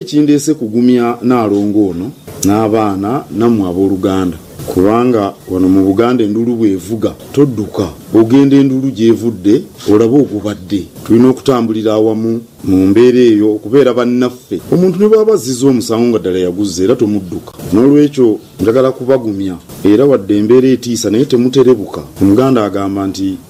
Kindeese kugumya Naalongo ono n'abaana nammwe abooluganda kubanga wano mu Buganda enduulu bw'evuga todduka, ogenda enduulu gy'evudde olabe ogubadde. Tulina okutambulira awamu mu mbeera eyo okubeera bannaffe. Omuntu ne bw'aba azzizza omusango nga ddala yaguzza era tomudduka. N'olwekyo njagala kubagumya era wadde embeera etiisa naye temuterebuka. Omuganda agamba nti.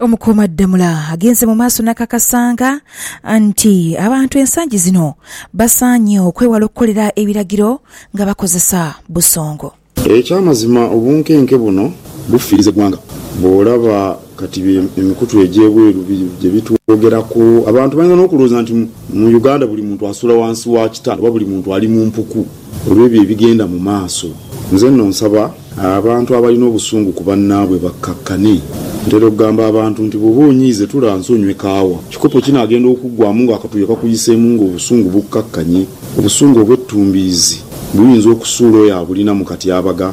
Omukuumaddamula agenze mu maaso nakakasanga nti abantu ensangi zino basaanye okwewala okukolera ebiragiro nga bakozesa busongo. Ekyamazima obunkenke buno bufiiriza eggwanga. Bwolaba kati emikutu egyebweru gyebitwogeraku, abantu bayinza nokulowooza nti mu Uganda buli muntu asula wansi wa kitanda oba buli muntu ali mu mpuku. Olw'ebyo ebigenda mu maaso, nze nno nsaba abantu abalina obusungu ku bannaabwe bakkakkane. Ntera okugamba abantu nti bw'oba onyiize tula nsi onywe kaawa. Kikopo ki naagenda okuggwaamu ng'akatuuyo kakuyiseemu ng'obusungu bukkakkanye? Obusungu obw'ettumbiizi buyinza okusuula oyo abulina mu katyabaga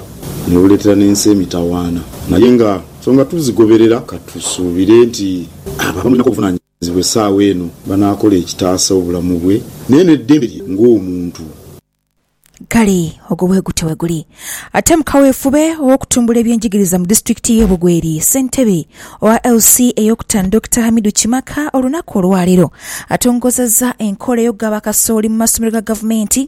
ne buleetera n'ensi emitawaana. Naye nga nsonga tuzigoberera, ka tusuubire nti abo abamulinako obuvunaanyizibwa, Zibwe esaawa eno banaakola ekitaasa obulamu bwe naye n'eddembe lye ng'omuntu. Kale ogwo bwegutyo bweguli ate mu kaweefube ow'okutumbula eby'enjigiriza mu disitulikiti y'e Bugweri. Ssentebe owa LC ey'okutano Dokita Hamidu Kimaka olunaku olwaleero atongozezza enkola ey'okugaba kasooli mu masomero ga gavumenti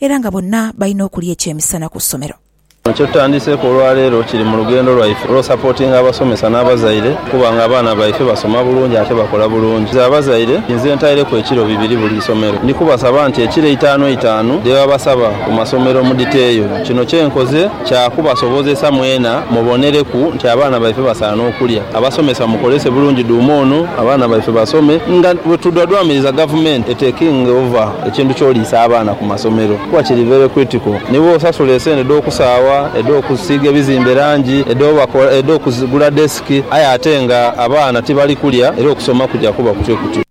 era nga bonna balina okulya ekyemisana ku ssomero. Kino kyetutandiseeku olwaleero kiri mu lugendo lwaife olw'osapotinga abasomesa n'abazaire okuba nga abaana baife basoma bulungi ate bakola bulungi. Nze abazaire nze ntaireku ekiro bibiri buli isomero ndi kubasaba nti ekiro eitaanu eitaanu dhebabasaba ku masomero mudhiteeyo. Kino kyenkoze kya kubasobozesa mwena mubonereku nti abaana baife basaana okulya. Abasomesa mukolese bulungi dhuuma ono abaana baife basome nga bwetudhwadhwamiriza gavumenti etekinge ova. Ekintu ky'oliisa abaana ku masomero kuba kiri very critical. Ni bw'osasula esente edh'okusaawa, edh'okusiiga ebizimbe langi, edh'obakola, edh'okugula desk aye ate nga abaana tibali kulya era okusoma kuja kuba kutyo kutyo.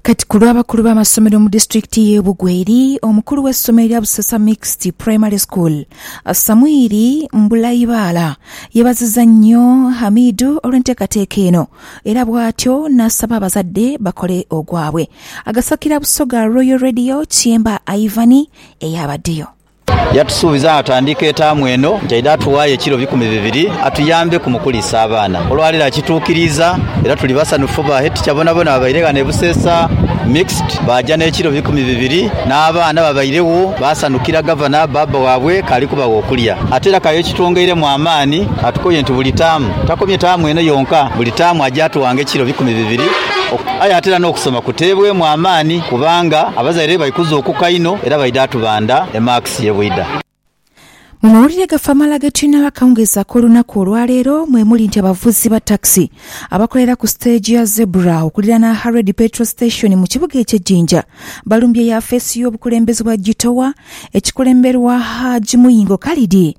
Kati ku lw'abakulu b'amasomero mu disitulikiti y'e Bugweri, omukulu w'essomero erya Busesa Mixed Primary School, Samwiri Mbulaibaala yeebazizza nnyo Hamidu olw'enteekateeka eno era bw'atyo n'asaba abazadde bakole ogwabwe. Agasakira Busoga Royal Radio Kyemba Ivan eyabaddeyo. Yatusuubiza nga tutandiika etaamu eno nti aidha atuwaayo ekiro bikumi bibiri atuyambeku mu kuliisa abaana. Olwaleero akituukiriiza era tuli basanhufu. Ba Headteacher bonabona babaire ghano e Buseesa Mixed baaja n'ekiro bikumi bibiri. N'abaana babairegho baasanhukira Gavana, bbaabba waabwe k'ali kubagha okulya. Ate era k'aye kitwongeiremu amaani atukooye nti buli taamu, takomye taamu eno yonka, buli taamu aja atuwanga ekiro bikumi bibiri. Aye ate era n'okusoma kuteebwemu amaani kubanga abazaire bali kuzuukuka inho era baidha tubandha emaakisi ye bwidha. Mu mawulire gaffe amalala ge tulinawo akawungeezi ak'olunaku olwaleero mwe muli nti abavuzi ba takisi abakolera ku siteegi ya Zebra okuliraana Haredi Petrol Station mu kibuga ekye Jinja balumbye yafeesi y'obukulembeze bwa Gitowa ekikulemberwa Hajj Muyingo Khalid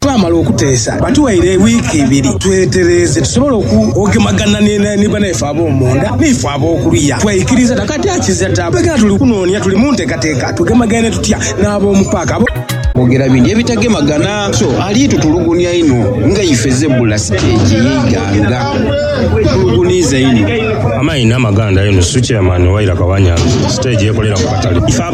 Twamala okuteesa, batuwaire wiiki ibiri twetereeze tusobole ogemagana ni banaife ab'omunda ni ife ab'okuluya. Twaikiriza dha kati akiza ta. Twekena tuli kunoonia tuli mu nteekateeka tugemagaine tutya n'ab'omu paaka abo. Twogera bindi ebitagemagana so ali tutulugunia inho nga ife Zebula siteegi ey'eighanga bwetulugunhiiza inho. Amaina amaganda Enusu, Chairman, Wairaka Wanyanzi, siteegi ekolera ku katale.